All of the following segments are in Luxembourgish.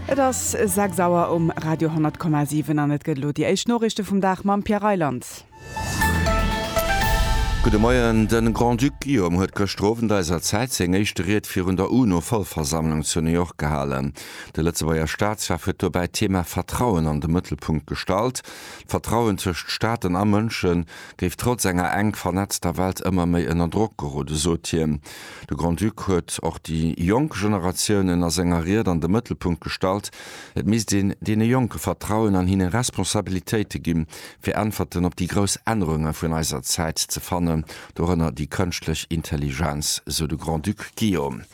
Et ass 6 Auer um Radio 10,7 an et gëtt elo déi éischt Noriichte vum Dag mam Pierre Reyland. Gudde Moien. De Grand-Duc Guillaume huet gëschter Owend eiser Zäit seng éischt Ried virun der UNO-Vollversammlung zu New York gehalen. De Lëtzebuerger Staatschef huet dobäi d'Thema Vertrauen an de Mëttelpunkt gestallt. D'Vertrauen tëscht Staaten a Mënsche géif trotz enger enk vernetzter Welt ëmmer méi ënner Drock gerode, sot hien. De Grand-Duc huet och déi jonk Generatiounen a senger Ried an de Mëttelpunkt gestallt. Et misst een deene Jonke Vertrauen an hinne Responsabilitéite ginn, fir Äntwerten op déi grouss Ännerunge vun eiser Zäit ze fannen, dorënner déi kënschtlech Intelligenz, sou de Grand-Duc Guillaume.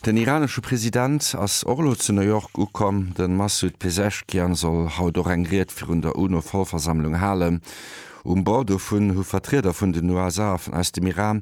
Den iranesche President ass och elo zu New York ukomm. De Massoud Pezeshkian soll haut och eng Ried virun der UNO-Vollversammlung halen. Um Bord dovun hu Vertrieder vun den USA, aus dem Iran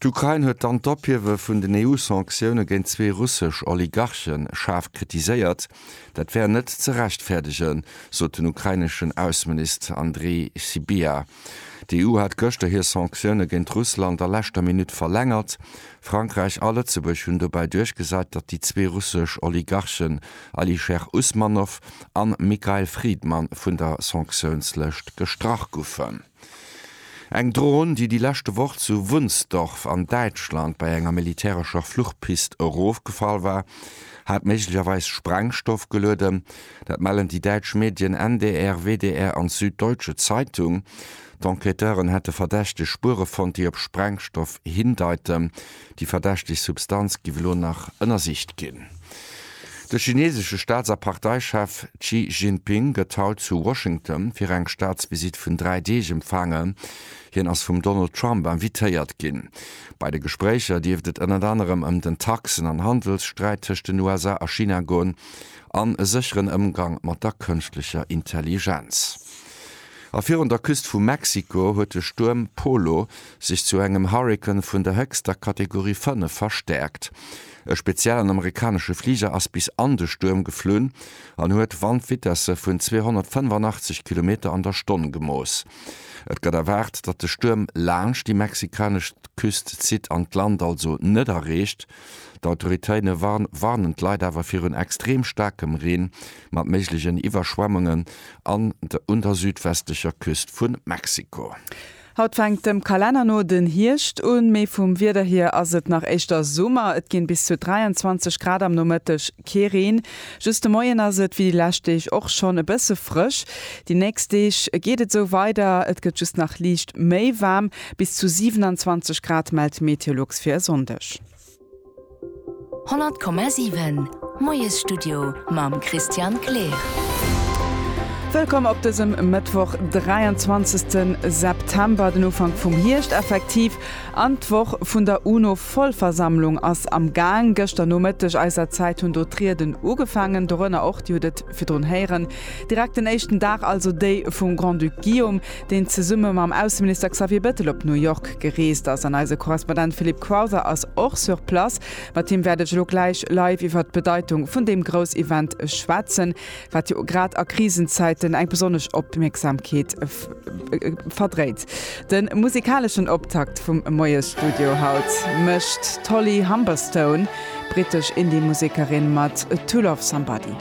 D'Ukrain huet dann d'Ophiewe vun den EU-Sanktioune géint zwee russesch Oligarche schaarf kritiséiert. Dat wär net ze rechtfäerdegen, sot den ukraineschen Ausseminist Andrii Sybiha. D'EU hat gëschter hir Sanktioune géint Russland a leschter Minutt verlängert. Frankräich a Lëtzebuerg hunn dobäi duerchgesat, datt déi zwee russesch Oligarchen Alisher Usmanov an Mikhail Fridman vun der Sanktiounslëscht gestrach goufen. Eng Dron, déi déi leschte Woch zu Wunsdorf an Däitschland bei enger militärescher Fluchpist erofgefall war, hat méiglecherweis Sprengstoff gelueden. Dat mellen déi däitsch Medien NDR, WDR an d'Süddeutsche Zeitung. D'Enquêteuren hätte verdächteg Spuere fonnt, déi op Sprengstoff hindeiten. Déi verdächteg Substanz giff elo nach ënnersicht ginn. De chinesesche Staats a Parteichef Xi Jinping gëtt haut zu Washington fir eng Staatsvisitt vun dräi Deeg empfaangen. Hien ass vum Donald Trump invitéiert ginn. Bei de Gespréicher dierft et ënnert anerem ëm den Taxen an Handelssträit tëscht den USA a China goen an e sécheren Ëmgang mat der kënschtlecher Intelligenz. A virun der Küst vu Mexiko huet de Stuerm Polo sech zu engem Hurrikan vun der héchster Kategorie 5 verstäerkt. E speziellen amerikanesche Fliger ass bis an de Stuerm geflunn an huet Wandvitesse vun 285 Kilometer an der Stonn gemooss. Et gëtt erwaart, datt de Stuerm laanscht déi mexikanesch Küst zitt an d'Land also net erreecht. D'Autoritéine warnen d'Leit awer virun extrem staarkem Reen mat méiglegen Iwwerschwemmungen an der un der südwestlecher Küst vu Mexiko. Haut fänkt dem Kalenner no den Hierscht un, mee vum Wieder hier ass et nach éischter Summer. Et ginn bis zu 23 Grad am Nomëtteg, kee Reen. Just de Moien ass et, wéi déi lescht Deeg och schonn, e bësse frësch. Déi nächst Deeg geet et esou weider, et gëtt just nach liicht méi waarm. Bis zu 27 Grad mellt Meteolux fir e Sonndeg. 100,7 Moiesstudio mam Christian Kleer. Wëllkomm op dësem Mëttwoch, 23 September, den Ufank vum Hierscht effektiv, an d'Woch vun der UNO-Vollversammlung ass am Gaang. Gëschter Nomëtteg eiser Zäit hunn do d'Rieden ugefaangen, dorënner och, Dir hutt et virdrun héieren, direkt den éischten Dag, also déi vum Grand-Duc Guillaume, deen zesumme mam Ausseminister Xavier Bettel op New York gereest ass. An eise Korrespondent Philippe Crowther ass och sur place. Mat him wäert ech elo gläich live iwwert d'Bedeitung vun deem Groussevent schwätzen, wat jo grad a Krisenzäiten eng besonnesch Opmierksamkeet verdréit. De musikaleschen Optakt vum Moiesstudio haut mécht d'Holly Humberstone, brittesch Indie-Musikerin mat To Love Somebody.